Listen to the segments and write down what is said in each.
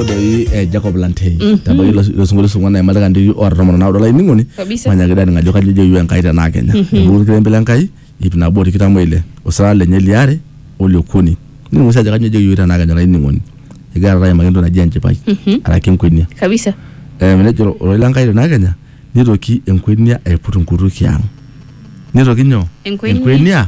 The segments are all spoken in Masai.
doi eh, Jacob Lantei tabaiki ilo ilo sinkolio sung'uan naimataka ndiki oota tomon naudo laining'oni Kabisa. manyaki dani ng'ajo kajo ijo iwe Enkai tenaa kenya epuku olkilembe le Enkai ip nabo tikitam oile osirata lenye liare oliokuni nining'u sii ajo kajo ijo iwe tenaa kenya laining'oni egira taata aimaki entoki naji enchipai araki enkwenia kabisa Eh, nejo ororei le Enkai tenaa kenya nitoki enkwenia aiput nkutukie ang nitoki nyoo Enkwenia.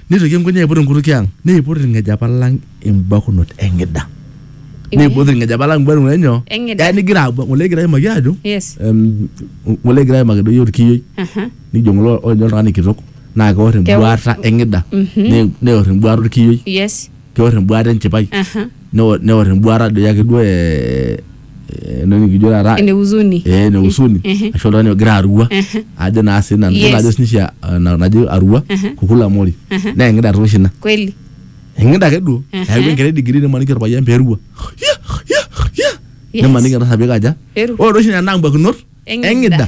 Neitoki enkunya aiput enkutukie ang, neiput ilng'ejepa lang imbakunot eng'ida. Neiput ilng'ejepa lang imbakunot enyo. Eng'ida. Yaani igira abu- ng'ole egira aimaki ajo Yes. em, ng'ole egira aimaki doi olkiyioi Aha. nijo ng'ole ojo oltung'ani kitok naa keor Keor. embuata eng'ida ne- neor embuata olkiyioi Yes. peor embuata enchipai Aha. neo- neor embuata doi ake duo eh, eh, ena nikijo taata Ene huzuni. eh, ene usuni Mhm. ashu oltung'ani ogira arua Mhm. ajo naa sii nanu Yes. yiolo ajo sinishe eh, na- najo arua Mhm. kukula mori Mhm. naa eng'ida tooshi ina Kweli. eng'ida ake duo Mhm. eeku enkerai digiri nimaniki orpayian peerua Ya, ya, ya. Yes. nimaniki entasapika aja Peru. ore oshi nena ambuakinot Eng'ida. eng'ida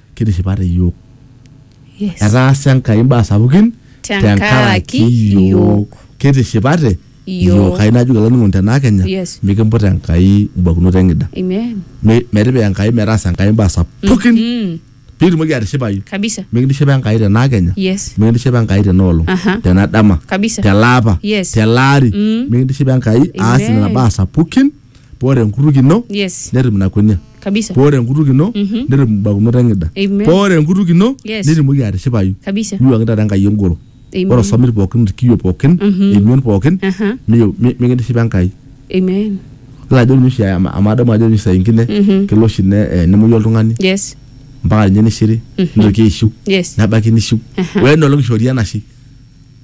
kitishipate iyiook. Yes. Etaasa Enkai imbaa sapukin Tenkaraki iyiook. Kitishipate Iyiook. Kayieu najoki olainining'oni tenaa Kenya Yes. mikimput Enkai imbakunot eng'ida. Amen. Mi- Metipika Enkai metaasa Enkai imbaa sapukin Mm. piitumoki atishipayu. Kabisa. Mikintishipa Enkai tenaa Kenya. Yes. Mikintishipa Enkai tena olong. Aha. Tena dama. Kabisa. Telaapa. Yes. Telaari. Mm. Mikintishipa Enkai aas Amen. nena baa sapukin poore enkutuk ino Yes. netum ina kunia Kabisa. poore enkutuk ino Mhm. netum imbakunot eng'ida Amen. poore enkutuk ino Yes. nitumoki atishipayu Kabisa. niwuangi taata enkai engoro Amen. ore osomit pookin irkiyio pookin Mhm. emion pookin Aha. miyo- mi- mikintishipa enkai Amen. ilo ajo ninye oshi ama- amu adamu ajo ninye saa ingine Mhm. kelo oshi ne- eh, nemuoyu oltung'ani Yes. mpaka ninye nishiri Mhm. nitoki aishiu Yes. nebaiki nishiu Aha. wenolong ishori enashe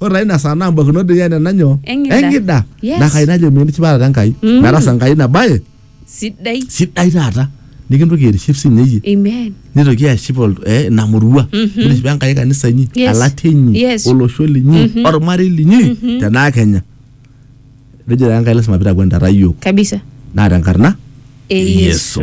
ore taa ina saa naa mbakinot doi ene nanyo Eng'ida. eng'ida Yes. naa kai najo mitisipata Enkai Mm. metasa Enkai ina baye sidai sidai taata nikintoki aitiship sinye iyie amen nitoki aship ol- eh, ina murua Mhm. nitishipa Enkai kanisa inyi Yes. elatia inyi Yes. olosho linyi Mhm. ormarei linyi Mhm. tenaa Kenya nejo taa Enkai lasima pitakuenitata iyiok kabisa naa tenkarna e yesu Yesu.